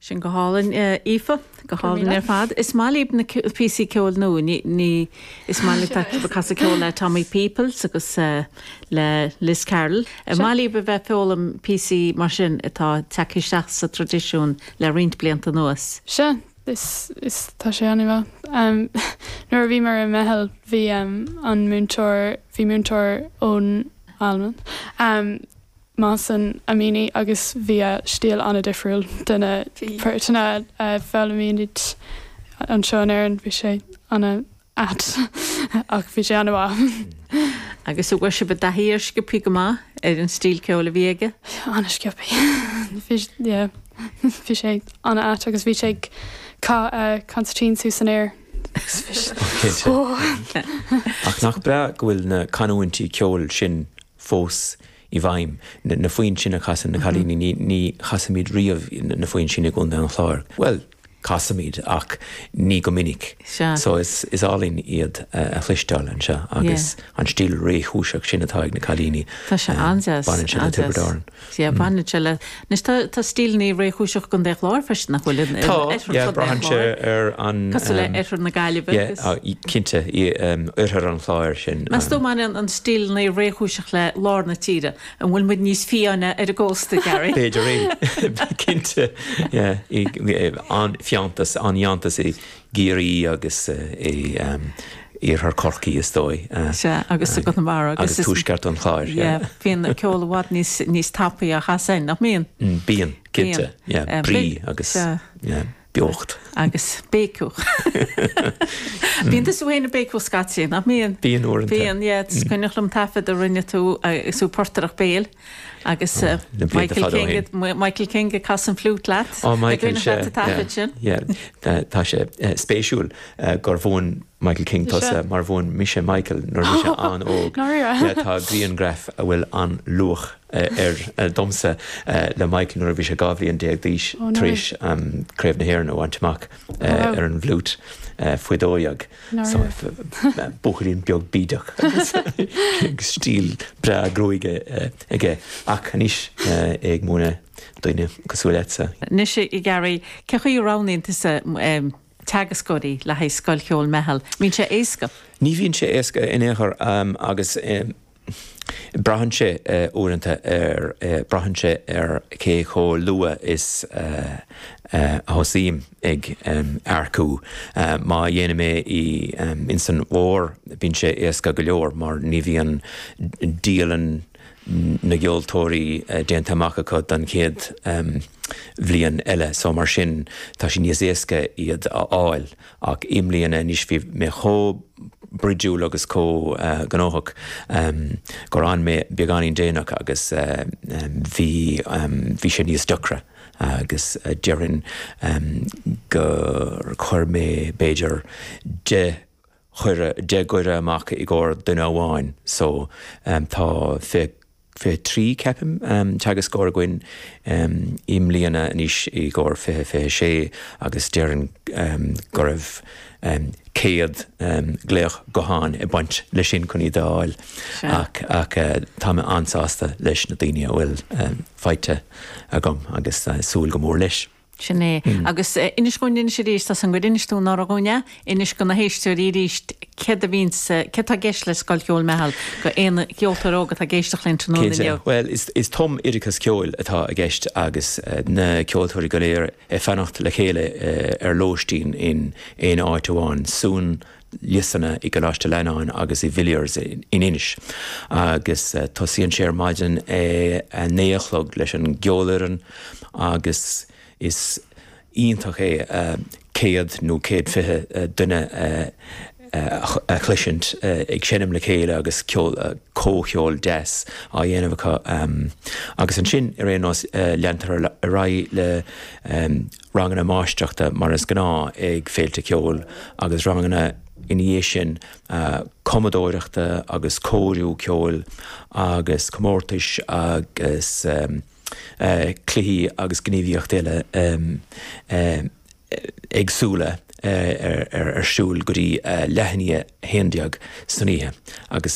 Sin go hálainn, Aoife. Go hálainn ar fad. Is maith libh píosaí ceoil nua. Ní, ní, is maith libh a bheith ag casadh ceol le Tommy Peoples agus le Liz Carroll. Maith libh a bheith ag foghlaim píosaí mar sin atá ag teacht isteach sa traidisiún le roinnt blianta anuas. Sea, is, is, tá sé an-mhaith. Nuair a bhíomar i Meitheal bhí an múinteoir, bhí múinteoir ón Albain, Mason, a mhúin muid, agus bhí a stíl an-difriúil de na páirteanna a fhoghlaimímid anseo in Éirinn. Bhí sé an-ait ach bhí sé an-mhaith. Agus an bhfuair sibh i dtaithí air sciobtha go maith ar an stíl ceoil a bhí aige? An-sciobtha. Bhí, yeah. Bhí sé an-ait agus bhí sé ag caitheamh an chonsairtín suas san aer. Cinnte. Ach nach breá go bhfuil na canúintí ceoil sin fós i bhfeidhm. Na foinn sin a chasann na cailíní, ní chasaimíd riamh na foinn sin i gContae an Chláir. Bhuel, casaimíd ach ní go minic. So is álainn iad a chloisteáil anseo agus an stíl réchúiseach sin atá ag na cailíní, baineann sé le Tiobraid Árann. Sea, baineann sé le. Anois tá tá stíl an-réchúiseach i gContae an Chláir freisin nach bhfuil in Tá, ar yeah, fud braitheann sé ar an Cosúil le oirthear na Gaillimhe. Yeah, agus. cinnte in um, oirthear an Chláir ansin. Meas tú an mbaineann stíl na réchúiseachta le lár na tíre an bhfuil muid níos fiáine ar an gcósta Gary. B'fhéidir é. Cinnte, yeah, i, an fiántas, an fiántas i gCiarraí agus in iarthar Chorcaí is dóigh. Sea, agus i gConamara agus. Agus tuaisceart an Chláir. Yeah, bhíonn an ceol i bhfad níos tapaí ach ansin, nach mbíonn? Bíonn, cinnte, yeah, brí agus beocht. Agus béiceadh. Bíonn tusa féin ag béiceadh scaití, nach mbíonn? Bíonn uaireanta. Bíonn, yeah, is cuimhneach liom taifead a rinne tú, sa bportaireacht béil. Agus Michael King, Michael King ag casadh an fliút leat. Ó Michael, sea. Tá sé sa taifead sin. Yeah, yeah. Tá sé spéisiúil gur mhúin Michael King tusa mar mhúin mise Michael nuair a bhí sé an-óg. Dáiríre. Yeah, tá griangraf a bhfuil an-luach air domsa le Michael nuair a bhí sé 12 bhliain d'aois tar éis Craobh na hÉireann a bhaint amach ar an bhfliút faoi dhó dhéag. Buachaillín beag bídeach agus stíl breá gruaige aige. Ach anois é ag múineadh daoine cosúil leatsa. Anois a Gary, cé chaoi a roghnaíonn tusa teagascóirí le haghaidh Scoil Cheoil Meitheal? An mbíonn sé éasca? Ní bhíonn sé éasca in aon chor agus. Braitheann sé uaireanta ar, braitheann sé ar cé chomh luath is a thosaím ag earcú. Má dhéanaim é i, ins an bhfómhar bíonn sé éasca go leor mar ní bhíonn dialann na gceoltóirí déanta amach acu don chéad bhliain eile so mar sin tá sé níos éasca iad a fháil. Ach i mbliana anois bhí mé chomh broidiúil agus chomh gnóthach gur fhan mé beagáinín déanach agus bhí sé níos deacra agus déarfainn gur chuir mé b'fhéidir deich gcuireadh amach i gcomhair duine amháin so tá fiche 23, ceapaim, teagascóir againn i mbliana anois i gcomhair fiche, 26, agus déarfainn go raibh céad glaoch gutháin ag baint leis sin chun iad a fháil ach tá mé an-sásta leis na daoine a bhfuil faighte agam agus súil go mór leis. Sin é. Agus inis dhúinn anois aríst, tá a fhios agam gur inis tú anuraidh dhúinn é, inis do na héisteoirí aríst céard a bhíonns, céard tá i gceist le Scoil Cheoil Meitheal do aon cheoltóir óg atá ag éisteacht linn tráthnóna Cinnte. inniu. Bhuel is, is tumoideachas ceoil atá i gceist agus na ceoltóirí go léir ag fanacht le chéile ar lóistín in aon áit amháin, suan liosanna i gColáiste Fhlannáin agus i Villiers in Inis agus tosaíonn sé ar maidin a naoi a chlog leis an gceolfhoireann agus is iontach é céad nó céad fiche duine a chloisint ag seinm le chéile agus comhcheol deas á dhéanamh acu agus ansin ar aon nós leantar ar aghaidh le ranganna máistreachta mar is gnáth ag féilte ceoil agus ranganna ina dhiaidh sin cumadóireachta agus cóiriú ceoil agus comórtais agus cluichí agus gníomhaíochtaí eile éagsúla ar siúl go dtí leath i ndiaidh a haon déag san oíche agus